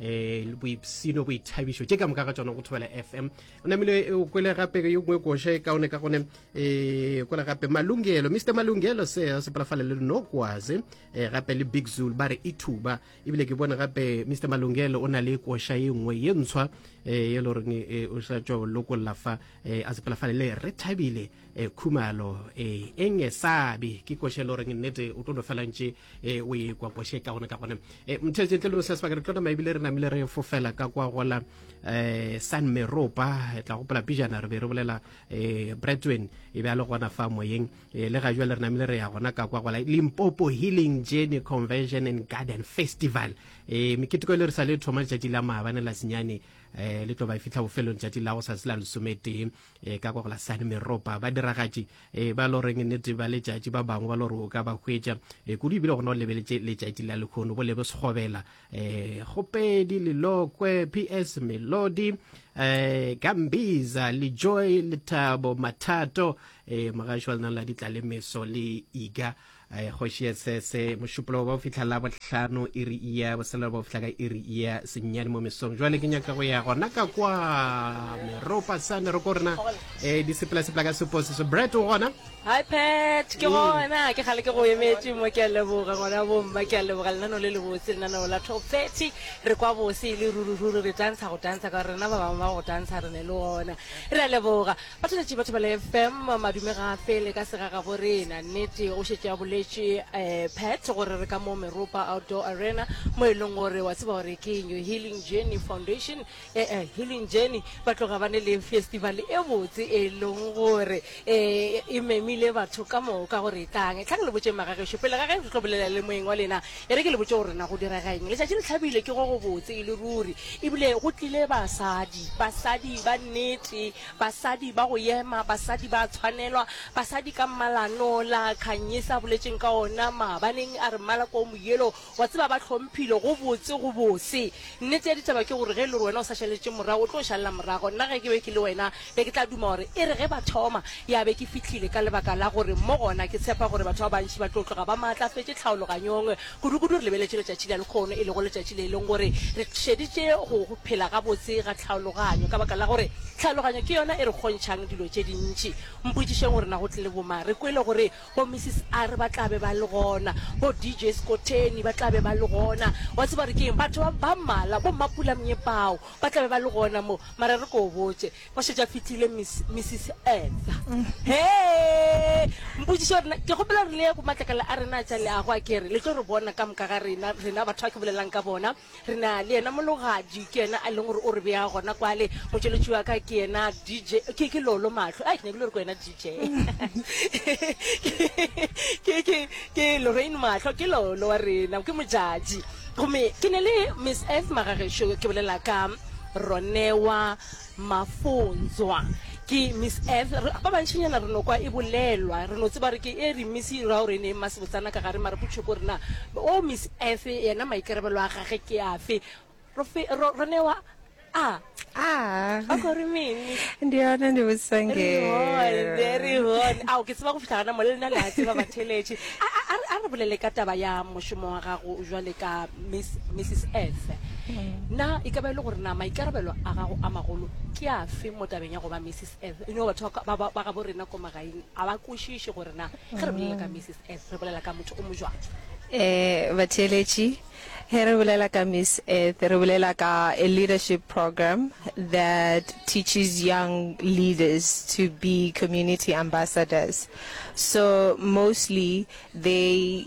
um boipsino boithabišo tše ka moka ga tsona go thobela fm o namile o kwele gape yo ngwe koše ka one ka gone um kwele gape malungelo mr malungelo se sepalafale le nokwase um eh, gape le big zul ba re ithuba e ebile ke bone gape mr malungelo o na le koša ye nngwe ye ntshwa um e le goreng eh, o sa tšwa lokolla fa um a sepalafale le re thabile um khumalo um e ngesabe ke koša e le goreng nnete o tlo no felantše e o e kwa kwashe ka gone ka gone e mthetse tle le se sebaka re tlo tsamaya ebile re namile re fofela ka kwa gola eh san meropa e tla gopola pijana re be re bolela eh bretwen e be a le gona fa moyeng e, le ga jwale re namile re ya gona ka kwa gola limpopo healing journey convention and garden festival e meketeko e le re sa le thoma letšatši la maabane la senyane eh le tlo ba e fitlha bofelong letšatši la go sa se la lesometee e ka kwa go la sane meropa ba diragatši e ba lo reng nnete ba letšatši ba bangwe ba lo re o ka ba hwetša e kudu ebile gona o lebeletše letšatši la lekgono bo lebe segobela e gopedi lelokwe ps melodi e gambiza le joy lethabo mathato e mogašo wa lena la ditla le meso le iga Eh, kgoši ye se se mošupologo ba o fitlha la bohlano e re iya boselelo ba o fitlha ka e re iya sennyane mo mesong jwale ke nyaka go ya gona ka kwa meropa sa meroko rena um eh, di sepelasepela ka seposi so bret o gona hi pet ke gona ke gale ke go emetse mo ke a leboga ngwana bomma ke a leboga lenano le le botse lenaneo la top thirty re kwa bose e le rurururi re tantsha go tantsha ka gore rena ba bangwe ba go tantsha re ne le ona re a leboga Bataletši batho ba le FM madume ga a fele ka sega gabo rena. Nnete o šetše a boletše eh, Pat gore re ka mo Meropa Outdoor Arena mo e leng gore wa tseba gore ke New Healing Journey Foundation eh, eh, Healing Journey ba tloga ba ne le festival e botse e leng gore eh, e memile batho ka moka gore tlang tlhang le botšeng magagešo pele ga ge re tlo bolela le moeng wa lena e re ke le botše gore na go direga eng letšatši le tlhabile ke go go botse e le ruri ebile go tlile basadi basadi ba nnete Basadi ba go yema, basadi ba tshwanelwa, basadi ka mmalano la Khanyisa a boletšeng ka ona maabaneng a re mmala ko moyelo, wa tseba ba hlomphilo go botse go bose. Nnete ya ditaba ke gore ge le gore wena o sa šaletše morago o tlo šalela morago, nna ge ke be ke le wena be ke tla duma gore e re ge ba thoma ya be ke fihlile ka lebaka la gore mo gona ke tshepa gore batho ba bantši ba tlo tloga ba maatlafetše tlhaologanyong Kudukudu re lebeletše letšatši la lekgono, e lego letšatši le e lego gore re šeditše go phela gabotse ga tlhaologanyo, ka baka la gore tlhaologanyo ke yona e re kgontšhang dilo tše dintši. Mpotšišeng gore na go tlile bomang? Re kwele gore bo Mrs. Are ba tla be ba le gona, bo DJ Skotheni ba tla be ba le gona. Wa tseba gore ke eng? Batho ba, ba mmalwa, bo Mmapula Mnye bao, ba tla be ba le gona mo. Mara re ko botše, Ba šetše a fihlile, Miss, Mrs. Edha. Hee! Mpotšiša gore na, ke kgopela gore le ye go matlakala a rena a tša leago, a kere, le tlo re bona ka moka ga rena, rena batho ba ke bolelang ka bona. Re na le yena Mologadi, ke yena a leng gore o re bea gona kwale. Motšweletši wa ka ke yena DJ, ke, ke Lolo Mahlo. Ai, ke nyakile gore ke wena DJ. Ke, ke, ke Lorraine Mahlo, ke Lolo wa rena, ke Modjadji. Gomme ke ne le Miss Edha, magagešo, ke bolela ka Ronewa. Mafonzwa. Ke Miss Earth. Re, ba bantšinyana re no kwa e bolelwa, re no tseba re ke e re Miss Raorene Mma Sebotsana ka gare, mara potšo ke gore na wo Miss Earth yena maikarebelo a gage ke afe? Ro fe, ro, ro newa a. A. Ba kwa re meng Miss? Ndi yona ndi botsang Re ee. hone, re hone. Ao, ke tseba go fihla gana mo le lena le a tseba batheletše. A, a, a re, a re bolele ka taba ya mošomo wa gago jwale ka. Miss, Mrs Efe. Na e ka ba e le gore na maikarabelo a gago a magolo ke afe mo tabeng ya go ba Mrs Efe? You know, batho ba ka- ba- ba- ba gabo rena ko magaeng a ba kwešiše gore na ge re bolela ka Mrs Efe re bolela ka motho o mo jwang. Eh, batheeletši, he re bolela ka Miss Earth, re bolela ka a leadership program that teaches young leaders to be community ambassadors. So mostly they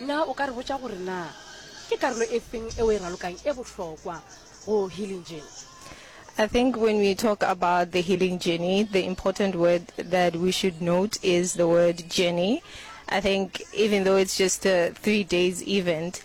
Na o ka re botša gore na ke karolo e feng e o e ralokang e bohlokwa go Healing Journey? I think when we talk about the healing journey, the important word that we should note is the word journey. I think even though it's just a three days event,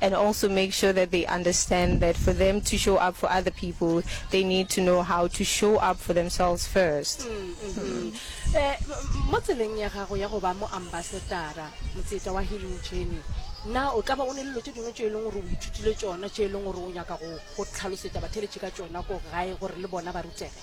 and also make sure that they understand that for them to show up for other people, they need to know how to show up for themselves first. Mm -hmm. eh, mo tseleng ya gago ya go ba mo ambasadara motseta wa healing journey na o tla ba o ne lelo tse dingwe tse e leng gore o ithutile tsona tse e leng gore o nyaka go tlhalosetsa batheletše ka tsona ko gae gore le bona ba rutege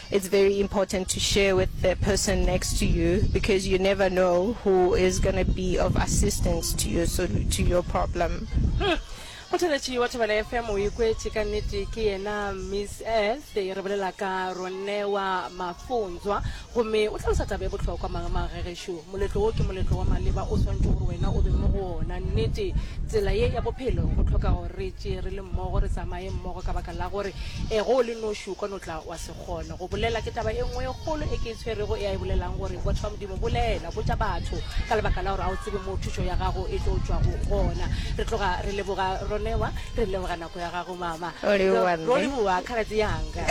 It's very important to share with the person next to you because you never know who is going to be of assistance to your, so, to your problem. Hmm. mothaletši wa thobela fm o ikwetše ka nnete ke yena miss earth e re bolela ka ronewa mafontswa gomme o tlhalosa taba e bohlokwa magemagegešo moletlo wo ke moletlo wa maleba o swantšhe gore wena o be mo go ona nnete tsela ye ya bophelo go tlhoka gore re tšee re le mmogo re tsamaye mmogo ka baka la gore e go o le noši o ka no tla Wa se kgone go bolela. Ke taba e nngwe e kgolo e ke e tshwerego e a e bolelang, gore, Botho bja Modimo, bolela, botša batho, ka lebaka la gore ga o tsebe moo thušo ya gago e tlo tšwago gona. Re tloga re leboga Ronewa. Re leboga nako ya gago, Mama. O leboga, Mme. Ro leboga, kgaradzi yanga.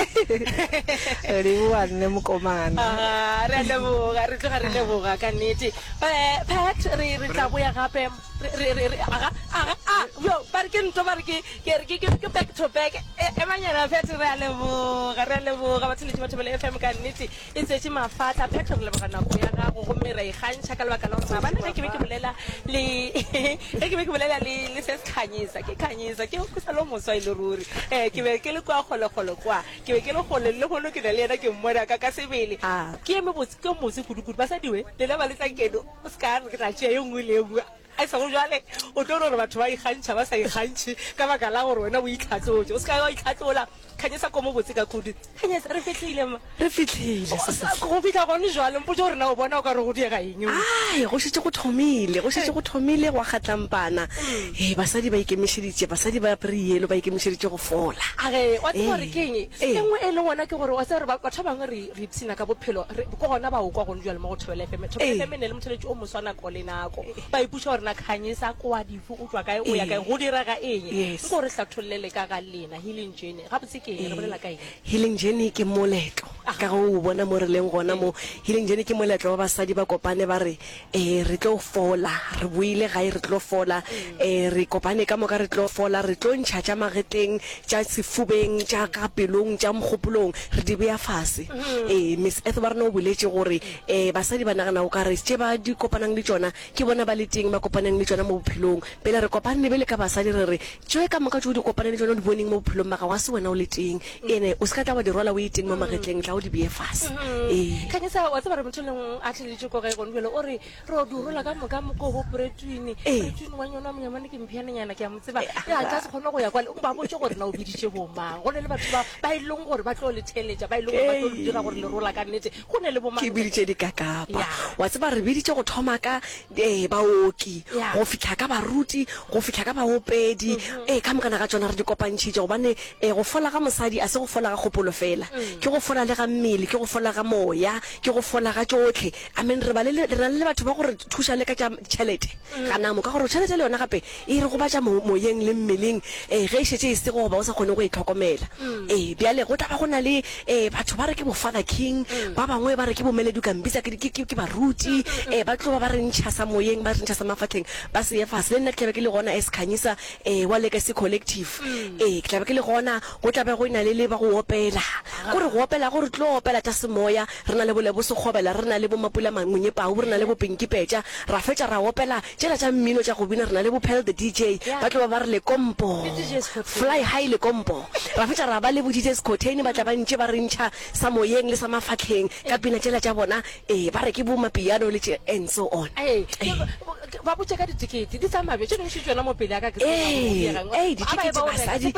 O leboga, Mme Mokomana. Aha, re a leboga. Re tloga re leboga, ka nnete. Ba, Pat, re, re tla boya gape. re re re re aga aga a yo ba re ke nto ba re ke ke re ke ke ke back to back e e manyana fete re a leboga re a leboga batho le batho bele FM ka nnete e tsetse mafatla phetho re leboga nako ya gago go me ra ikgantšha ka lebaka la gore ba ne ke be ke bolela le ge ke be ke bolela le le se se khanyisa ke khanyisa ke go sa lo moswa ile e ruri eh ke be ke le kwa gole gole kwa ke be ke le gole le gole ke na le yena ke mmona ka ka sebele ah. ke eme botse ke motse kudu kudu basadiwe le le ba le tla keno O se ka re ke tla tšea ye nngwe le ye nngwe. A e sego bjale o tlo no re batho ba ikgantšha ba sa ikgantšhe ka baka la gore wena o itlhatlotše. O se ka wa itlhatlola. Kganyesa koma botse ka kudu. Kganyesa, Re fihlile, mma. Re fihlile, O sa go bitla gone bjale. Mpotše gore na o bona o ka re go diega eng mo. Ai, go šetše go thomile. Go šetše go thomile go akga tlampana. Ee, basadi ba ikemišeditše, basadi ba apere yellow ba ikemišeditše go fola. A re, wa tseba gore ke eng? Ee. E nngwe e leng gona ke gore wa tseba gore ba, batho ba bangwe re, Re ipshina ka bophelo, re ko gona ba o kwa gone jwale mo go Thobela FM. Thobela FM e ne le motheletši o moswa nako le nako. Ba ipuša gore na kgang e sa kwa dife, o tšwa kae, o ya kae, go direga eng. Nko o re hlathollele ka ga lena Healing Journey. Gabotse ke eng, re bolela ka eng? Healing Journey ke moletlo, ka ge o o bona mo re leng gona mo. Healing Journey ke moletlo wa basadi ba kopane ba re Ee, re tlo fola. Re boile gae, re tlo fola. Ee, re kopane ka moka, re tlo fola. Re tlo ntšha tša magetleng, tša sefubeng, tša ka pelong, tša mogopolong, re di bea fase. Ee, Miss Ethel wa rena o boletše gore ee, basadi ba nagana o ka re tše ba di kopanang le tšona ke bona ba le teng, ba kopaneng le tšona mo bophelong. Pele re kopanne bjale ka basadi, re re Tše ka moka tše o di kopane le tšona o di boneng mo bophelong ba gago, ga se wena o le teng, ene o se ka tla wa di rwala o e teng mo magetleng, tla o di beye fase. Ee. Khanyisa, wa tseba gore motho leng a tlheleletše ko gae gone bjale, o re re wa di rwala ka moka mokobo poretwine, Ee. poretwine wa nyona monyamane ke mpheanenyana, ke a mo tseba, ya a ka se kgone go ya kwale, o ba botše gore na o biditše bomang, go na le batho ba ba e leng gore ba tlo le theeletša, ba e leng gore ba tlo le dira gore le rwala ka nnete, go na le bomang? Ke biditše dikakapa. Ya. Wa tseba re biditše go thoma ka Ee, baoki, go fihla ka baruti, go fihla ka baopedi, ee, ka mokana ga tšona re di kopantšhitše, gobane, ee, go fola ga mosadi a se go fola ga kgopolo feela, ke go fola le ga mmele, ke go fola ga moya, ke go fola ga tšohle. Amen. Re ba le, re na le le batho ba go re thuša le ka tša tšhelete, ganamo, ka gore tšhelete le yona gape E re gobatša mo, moyeng le mmeleng, ee, ge e šetše e sego goba o sa kgone go e hlokomela. Ee, bjale go tla ba go na le, ee, batho ba re ke bo-Father King, ba bangwe ba re ke bo-Melody, o ka mpitsa ke, ke, ke, ke baruti, ee, ba tlo ba ba re ntšhasa moyeng, ba re ntšhasa mafahleng, ba se ye fase. Le nna ke tla be ke le gona as Khanyisa, ee, wa Legacy Collective. Ee, ke tla be ke le gona, go tla be go e-na le le ba go opela. Ko re go opela, go re tlo opela tša semoya, Re na le bolebosekgobela, re na le bomapulamangonyepau, re na le bopinkipetša, ra fetša ra opela tšela tša mmino tša go bina, re na le bophel the DJ, ba tlo ba ba re lekompo, fly high lekompo, ra fetša ra ba le bodjs khotheine ba tla ba ntše ba re ntšha sa moyeng le sa mafahleng ka pina tšela tša bona, ee, ba re ke bomapiano le tše and so on. Ee, ee, ditekete basadi,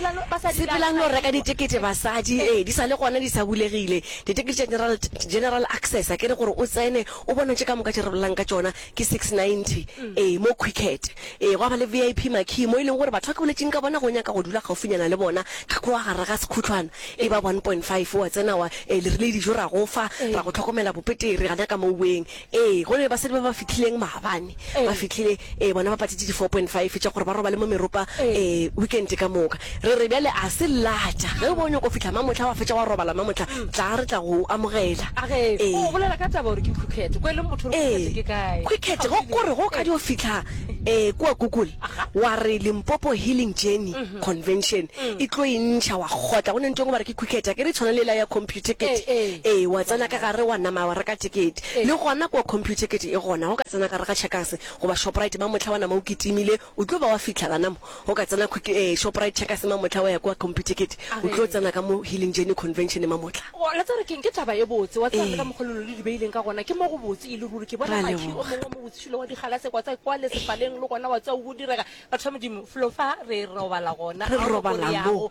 sepelang lo reka ditekete basadi, ee, di sa le gona di sa bulegile. Ditekete tša general, general access, a ke re gore o tsene o bona tše ka moka tše re bolelang ka tšona ke 690, ee, mo Quicket. Ee, gwa ba le VIP marquee mo e leng gore batho ba ke boletšeng ka bona ge o nyaka go dula gaufinyana le bona, ka kwa gare ga sekhutlwana, e ba 1.5, wa tsena wa, ee, le rile dijo ra go fa, ra go tlhokomela bopetere gana ka mo weng, Ee, go ne le basadi ba ba fihlileng maabane, ba fihlile, ee, bona ba patšitše di-four point five tša gore ba robale mo meropa, ee, weekend ka moka. Re re, Bjale a se latša, ge o be o nyaka go fihla mamohla, wa fetša wa robala mamohla, tlaa re tla go o amogela. Ee. O bolela ka taba gore ke Quikket, go e leng motho o re Quikket ke kae. Ee, Quikket, ge o re ge o ka dio fihla, ee, kua Google, wa re Limpopo Healing Journey Convention, e tlo e ntšha, wa kgotla, go ne ntweng o ba re ke Quikket, a ke re e tshwana le yela ya Compu. dithekete. Ee, wa tsena ka gare wa nama wa reka thekete. Le gona kua Computicket e gona, o ka tsena gare ga Checkers goba Shoprite ba mohla wa nama o kitimile, o tlo ba wa fihla gana mo. O ka tsena Quick, ee, Shoprite, Checkers ma mohla wa ya kua Computicket, o tlo tsena ka mo Healing Journey Convention ma mohla. Wa tseba ke eng? Ke taba e botse. Wa tseba le ka mokgwa lelo le di beileng ka gona, ke mo go botse e le ruri. Ke bona makhi o mongwe wa mo botshilo wa digalase kwa tsa kwale sefaleng, le gona wa tseba o bo direga. Batho ba Modimo, flo fa re robala gona, ga o re ko re yago,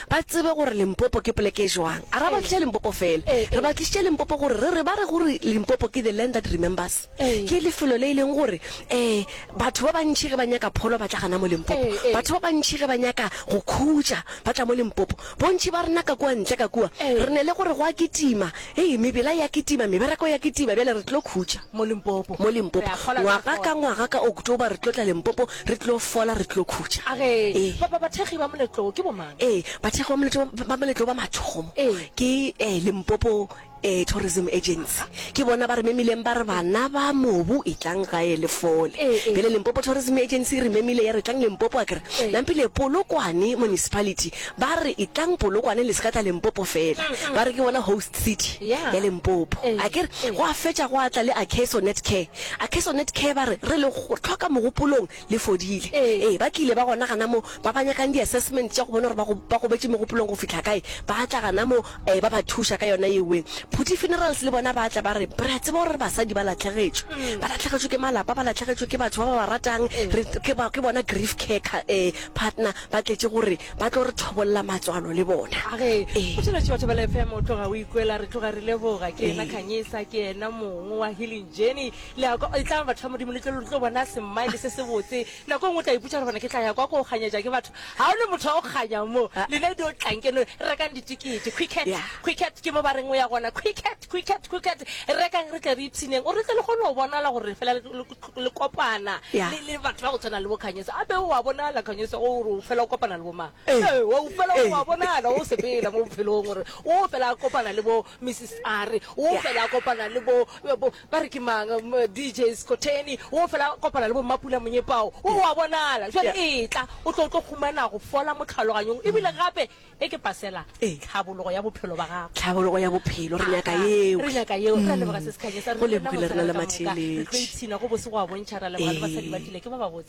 ba tsebe gore Limpopo ke poleke e joang. A ra ba tliša Limpopo fela, re ba tlišitše Limpopo gore re re ba re gore Limpopo ke the land that remembers, ke lefelo le e leng gore um batho ba bantši ge ba nyaka pholo ba tla gana mo Limpopo, batho ba bantši ge ba nyaka go khutša ba tla mo Limpopo. Bontši ba rena ka kua ntle ka kua re ne le gore go a kitima, hei mebela e a kitima, mebereko e a kitima, bjale re tlo khutša mo Limpopo. Ngwaga ka ngwaga ka October re tlo tla Limpopo Re tlo fola, re tlo khutša. A re, Ee. Ba, ba, bathekgi ba moletlo wo ke bomang? Ee, bathekgi ba moletlo, ba moletlo wo ba mathomo Ee. ke eh, Limpopo eh, Tourism Agency. Ke bona ba re memileng ba re, Bana ba mobu, etlang gae le fole. Ee, ee. Bjale Limpopo Tourism Agency e re memile ya re, Tlang Limpopo, a ke re, Ee. Nampile, Polokwane Municipality ba re, Etlang Polokwane, le se ka tla Limpopo fela. Ba re ke bona host city Yeah. ya Limpopo. Ee, A ke re, ee. gwa fetša gwa tla le Akeso Netcare, A Kesonet Care ba re, Re le hloka mogopolong le fodile. Ee, ba tlile ba gona gana mo. Ba ba nyakang di-assessment tša go bona gore ba go, ba gobetše megopolong go fihla kae, ba tla gana mo, ee, ba ba thuša ka yona ye wee. Phuti Funerals le bona ba tla ba re, Re a tseba gore basadi ba latlhegetšwe. Ba latlhegetšwe ke malapa, ba latlhegetšwe ke batho ba ba ba ratang. Re, ke ba, ke bona Grief Care Ka, ee, Partner ba tletše go re, ba tlo re thobolla matswalo le bona. A Re, Ee. Phatlalatši wa Thobela FM o tloga o ikwela, re tloga re leboga. Ke yena Ee. Khanyisa, ke yena mong wa Healing. Jenny, le ya kwa, etlang batho ba Modimo le tlo, le tlo bona smile se sebotse. Nako e nngwe o tla iputša gore bona ke tla ya kwa ko kganyetša ke batho. Ga o ne motho wa go kganya mo. Ah. Lena dio tlang keno, rekang ditikete. Quicket, Yeah. quicket, ke mo ba reng o ya gona. Quicket, quicket, quicket, rekang re tle re ipshineng. O re tle le kgone go bonala gore fela le, le, le kopana Yeah. le, le batho ba go tshwana le bo Kganyoso. A be o a bonala Kganyoso o gore o fela o kopana le bo mang? Ee. Ee, wa o fela o a bonala o sepela mo bophelong gore o fela a kopana le bo Mrs. A re wo fela a kopana le bo, bo ba re ke mang, DJ Skotheni, wo fela a kopana le bo Mmapula Monyepao, wo wa bonala. Jwale etla, o tlo, o tlo humana go fola mo tlhaloganyong, ebile gape e ke pasela tlhabologo ya bophelo ba gago. Tlhabologo ya bophelo, re nyaka yeo. Re nyaka yeo. Re a leboga, Sesi Khanyisa. Re, re na bohle re le ka moka re tlo ipshina go bose go a bontšha. Re a leboga le basadi ba tlile, ke ba ba botse.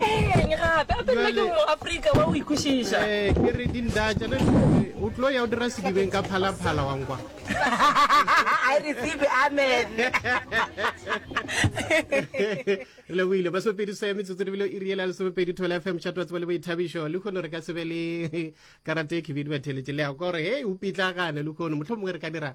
Eng gape? Gape nna ke moafrika wa o ikwešiša. Ee, ke re dindatša le o tlo ya o dira sedibeng ka phalaphala wa nkwa. I receive it, amen. Re lebohile. Masomepedi se metsotso di bile iri e la lesomepedi thole fm chat wa tseba le boithabišo le kgono re ka se be le karate e khibidu ba theletše le ya kore hei o pitlagane le kgono mohlho mongwe re ka dira